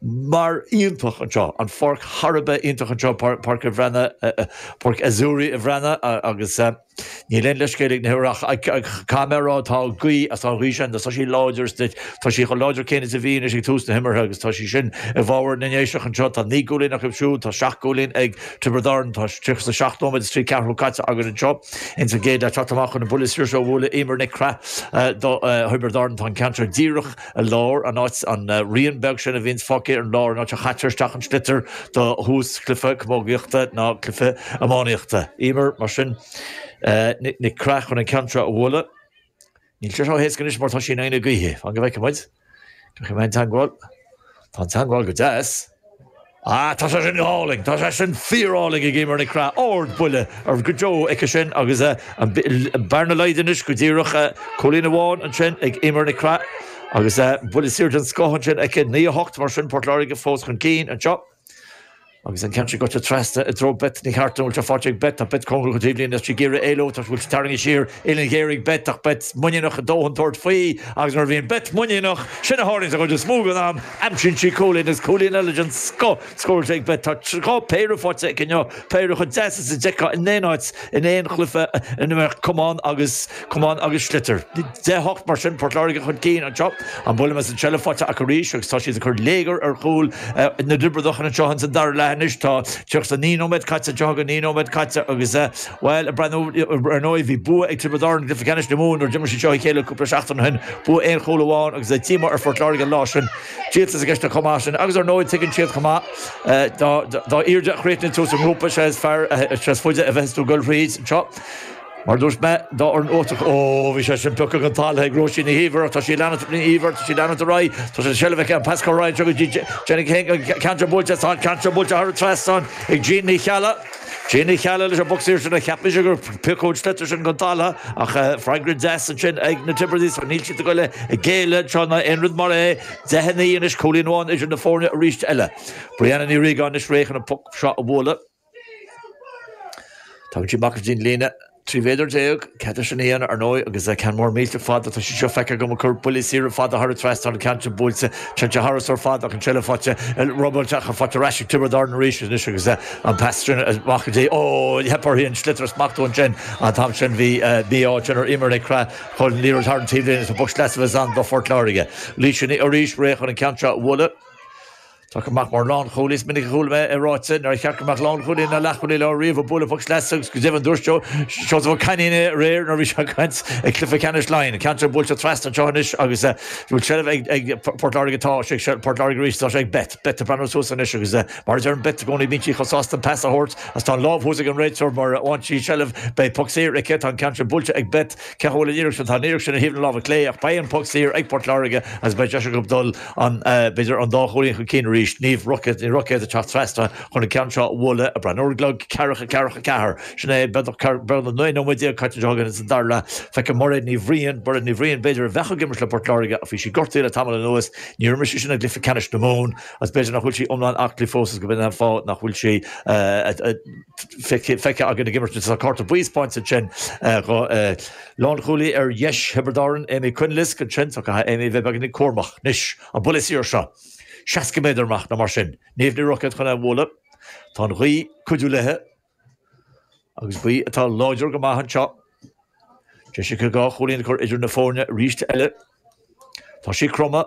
mar iontach anseo, an pháirc thar a bheith iontach anseo, Páirc a' Bhreatnaigh, Páirc Azzurri a' Bhreatnaigh, agus níl aon leithscéal ag na himreoirí ach caithfidh mé a rá tá gaoth as an ghaoth sin agus tá sí láidir is tá sí chomh láidir céanna is a bhí anois ag tús na himeartha agus tá sí sin i bhfabhar na nDéiseach anseo. Tá naoi gcúilín acu siúd, tá seacht gcúilín ag Tiobraid Árann, tá tríocha 's a seacht nóiméad is trí ceathrú caite againn anseo ins an gcéad leath. Teacht amach chun an buille saor seo a bhualadh Eimear Nic Craith do Thiobraid Árann, tá an ceann seo díreach Ar lár, an áit, an rian beag sin a bhíonns fágtha ar an lár, an áit a chaitear isteach an sliotar do thús cluife camógaíochta ná cluife iománaíochta. Eimear, mar sin, Nic Craith chun an ceann seo a bhualadh. Níl sé seo éasca anois mar tá sí in aghaidh na gaoithe. Fan go bhfeice muid cén chaoi a mbeidh an teangmháil. Tá an teangmháil go deas. Ah, tá sé sin go hálainn! Tá sé sin fíorálainn, ag Eimear Nic Craith. Ardbhuille go deo aici sin agus an bhearna laghdaithe anois go díreach. Cúilín amháin ansin ag Eimear Nic Craith agus buille saor den scoth ansin aici. Naoi a hocht mar sin, Port Láirge fós chun cinn anseo. Agus an ceann sin goite trasna i dtreo Beth Ní Chearta. An bhfuil sé faighte ag Beth? Tá Beth cóngarach don taobhlíne agus sí ag iarraidh éalú. Tá bhfuil sí tarraingthe siar, uillinn ghéar ag Beth ach Beth muiníneach a dóthain tabhairt faoi agus nuair a bhíonn Beth muiníneach, sin a tharlaíonn sa chuid is mó den am. Aimsíonn sí cúilín agus cúilín eile den scoth scóráilte ag Beth. Tá dhá phéire faighte aici inniu, péire chomh deas is a d'fheicfeá in aon áit, in aon chluiche ina mbeadh camán agus camán agus sliotar. Deich, a hocht mar sin, Port Láirge chun cinn anseo. An buille amach is an tseilbh faighte acu arís agus tá siad ag cur léigear ar chúl na dTiobradach anseo sa dara leath anois. Tá tríocha naoi nóiméad caite, tríocha naoi nóiméad caite agus. Bhuel, a Bhriain, ar ndóigh bhí bua ag Tiobraid Árann i gCluiche Ceannais na Mumhan nuair a d'imir siad seo a chéile cúpla seachtain ó shin, bua aon chúl amháin agus a' t-íomhá ar Phort Láirge an lá sin. Díoltas i gceist chomh maith sin agus ar ndóigh tuigeann siad chomh maith dá airde a chríochnaíonn tú sa ngrúpa sé is fearr, sé is faide a bheas tú ag goil thríd anseo. Mar a dúirt mé, dá fhoireann uachtarach, óóó bhí sé sin pioctha den talamh ag Róisín Ní Íomhair ach tá sí ag leanúint, Ní Íomhair, tá sí ag leanúint ar aghaidh, tá an tseilbh aici an pas chomh raghaid seo go dtí Jean Ní Cheallaigh, an ceann seo buailte, tá an ceann seo buailte thar an trasnán ag Jean Ní Cheallaigh. Jean Ní Cheallaigh leis an bpoc saor ann a cheap mise gur piocadh an sliotar sin den talamh ach freagra deas ansin ag na Tiobradaigh so níl siad ag goil ag géilleadh seo ná aon rud mar é. Deich, a naoi anois, cúilín amháin idir na foirne arís eile. Brianna Ní Riagáin anois réidh chun an poc seo a bhualadh. Tagann sí amach go dtí an líne. 13 mhéadar, cead aici sin a dhéanamh, ar ndóigh, agus ceann mór millteach fada, tá sí seo feicthe agam ag cur buillí saora fada thar an trasnán, ceann sin buailte, ceann sin tharasóir fada ach an tseilbh faighte, robáilte acu, faighte ar ais ag Tiobraid Árann arís anois agus an pas sin amach go dtí, ó, theip uirthi an sliotar a smachtú ansin, an t-am sin bhí mí-ádh ansin ar Eimear Nic Craith, chuaigh an liathróid thar an taobhlíne is poc sleasa a bheas ann do Phort Láirge. Laoise arís réidh chun an ceann seo a bhualadh. Tá chomh maith mar lánchúlaí. Is minic a chuala mé é ráite nár cheart go mbeadh lánchúlaí ná leathchúlaí láir riamh ag bualadh puc sleasa agus go deimhin dúirt Seosamh Ó Cainín é aréir nuair a bhí sé ag caint ag Cluiche Ceannais Laighean, ceann atá buailte trasna anseo anois agus bhfuil seilbh ag Port Láirge tá sé ag Port Láirge arís tá sé ag Beth, Beth ag breathnú suas anois agus mar a dhéanann Beth i gcónaí bíonn sí chomh sásta pas a thabhairt is tá an lámh thuas ag an réiteoir mar a bhain sí seilbh beidh puc saor aici tá an ceann sin buailte ag Beth. Cá bhfuil an fhíric sin? Tá an fhíric sin ar thaobh na láimhe clé, ach beidh an puc saor ag Port Láirge agus beidh deis acu dul b'fhéidir an dá chúilín chun cinn arís. Ní Roicéad ag teacht trasna chun an ceann seo a bhualadh, ag breathnú ar an gclog, ceathracha a hocht ceathracha a ceathair. Sin é, beagnach 19 nóiméad caite anseo againn sa dara leath. Feicim Mairéad Ní Bhriain. Mairéad Ní Bhriain, B'fhéidir a bheadh ag imirt le Port Láirge ach bhí sí gortaithe le tamall anuas. Níor imir sí sin i gcluiche ceannais na Mumhan agus b'fhéidir nach bhfuil sí iomlán aclaí fós agus go b'in an fáth nach bhfuil sí ag feicthe againn ag imirt. Tá cárta buí taispeánta ansin do lánchúlaí ar dheis Thiobraid Árann, Amy Quinlisk ansin so caithfidh Amy a bheith beagán cúramach anois. An buille saor seo, 60 méadar amach nó mar sin. Niamh Ní Roicéad chun é a bhualadh. Tá an ghaoth ag cuidiú léi agus gaoth atá láidir go maith anseo. Deis aici dhá chúilín a chur idir na foirne arís eile. Tá sí cromtha.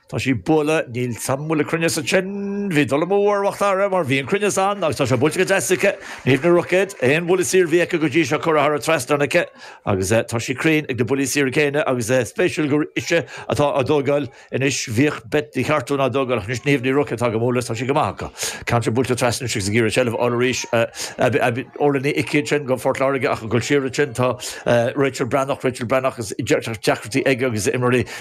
Tá sé buailte, níl san mbualadh cruinneas ansin, bhí dul amú ar Mhacdara mar bhí an cruinneas ann agus tá sé buailte go deas aici, Niamh Ní Roicéad, aon bhuille saor bhí aici go dtí seo curtha thar an trasnán aici agus tá sí cruinn ag na buillí saora céanna agus spéisiúil gur ise atá á dtógáil anois, bhíodh Beth Ní Chartúin á dtógáil ach anois Niamh Ní Roicéad atá dhá mbualadh is tá sí go maith acu. Ceann buailte trasna anois agus ag iarraidh seilbh a fháil arís, Orla Ní Icí ansin do Phort Láirge ach ag dul siar ansin tá Rachel Breathnach, Rachel Breathnach agus deacrachtaí aici agus imreoirí